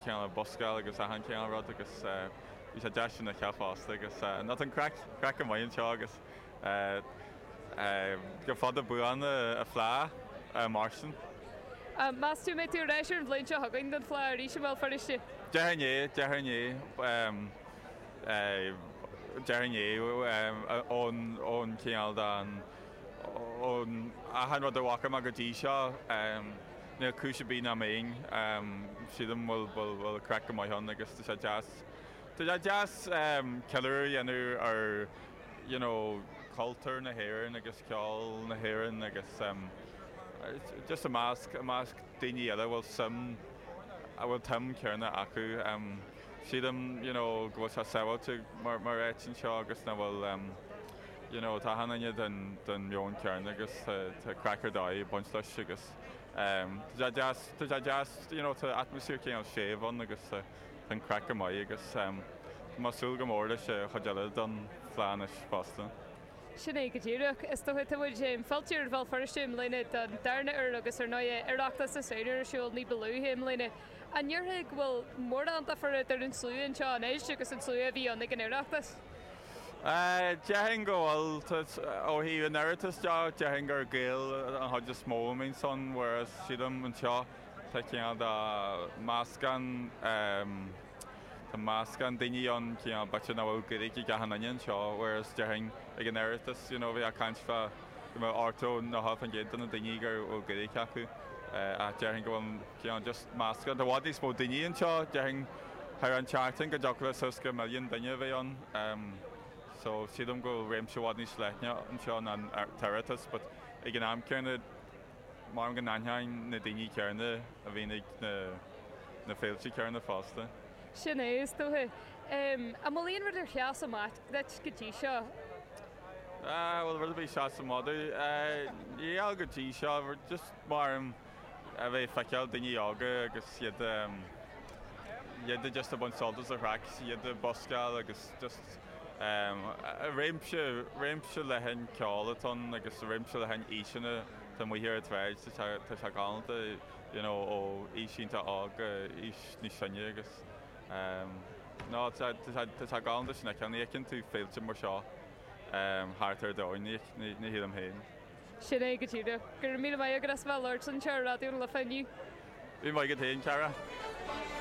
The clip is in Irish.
ceol buscála agus achan cineál rud agus tá sé deas an ceol fosta agus no tá an craic craic amuigh anseo agus go fada buan an Fhleadh a Mháirtín. Meas tú an mbeidh tú ar ais ar an bhliain seo chugainn don Fhleadh arís i mBéal Feirste. Definitely, definitely, definitely ón ón cineál de ón achan rud a bhfaca mé go dtí seo. Níl cúis ar bith nach mbeinn, sílim, go bhfuil craic maith ann agus tá sé deas, tá sé deas ceiliúradh a dhéanamh ar you know cultúr na hÉireann agus ceol na hÉireann agus just i measc, i measc daoine eile a bhfuil suim, a bhfuil an tsuim chéanna acu. Sílim you know go bhfuil sé sábháilte mar áit anseo agus nach bhfuil you know, tá achan duine den mheon céanna agus tá craic ar dóigh ag baint leis agus. Tá sé, tá sé deas, you know, tá atmaisféar cineál séimh ann agus tá an craic go maith agus tá mé ag súil go mór leis an chuid eile den Fhleadh anois fosta. Sin é go díreach. Is dócha. Tá muid, em, fillte ar Bhéal Feirste i mbliana don darna uair agus ar ndóigh Oireachtas na Samhna ar siúl ní ba luaithe i mbliana. An ndéarfá go bhfuil mórán difear idir an slua anseo anois agus an slua a bhí ann ag an Oireachtas? Déarfainn go bhfuil. Ó thaobh an Oireachtais de, déarfainn gur Gaeil an chuid is mó a mbíonn ansin whereas sílim anseo tá cineál de meascán, tá meascán daoine ann cineál b'fhéidir nach bhfuil Gaeilge ag achan duine anseo whereas déarfainn ag an Oireachtas you know bheifeá ag caint fá ochtó nó 90% de na daoine go bhfuil Gaeilge acu ach déarfainn go bhfuil Tá just meascán i bhfad níos mó daoine anseo. Déarfainn thar an tseachtain go dtiocfadh le suas go milliún duine a bheith ann. So sílim go bhfuil réimse i bhfad níos leithne anseo ná an tOireachtas but ag an am céanna mar a dúirt mé go n-aithním na daoine céanna a bhíonn ag na féilte céanna fosta. Sin é, is dóiche. An bhfuil aon rud ar sheas amach duit go dtí seo? An bhfuil rud ar bith seas amach dom? Níl go dtí seo, just mar a dúirt mé. a bheith ag feiceáil daoine óga agus iad iad just ag baint sult as an chraic, iad ag buscáil agus just réimse, réimse leathan ceoil atá ann agus réimse leathan aoiseanna atá amuigh ar an tsráid, tá sé galánta you know ó aois iontach óg go aois níos sine agus no tá sé galánta sin a fheiceáil, ní fheiceann tú féilte mar seo thart ar domhain, ní shílim féin. Sin é go díreach. Go raibh míle maith agat as bheith ag labhairt anseo ar Raidió na Life inniu. Go raibh maith agat féin, a chara.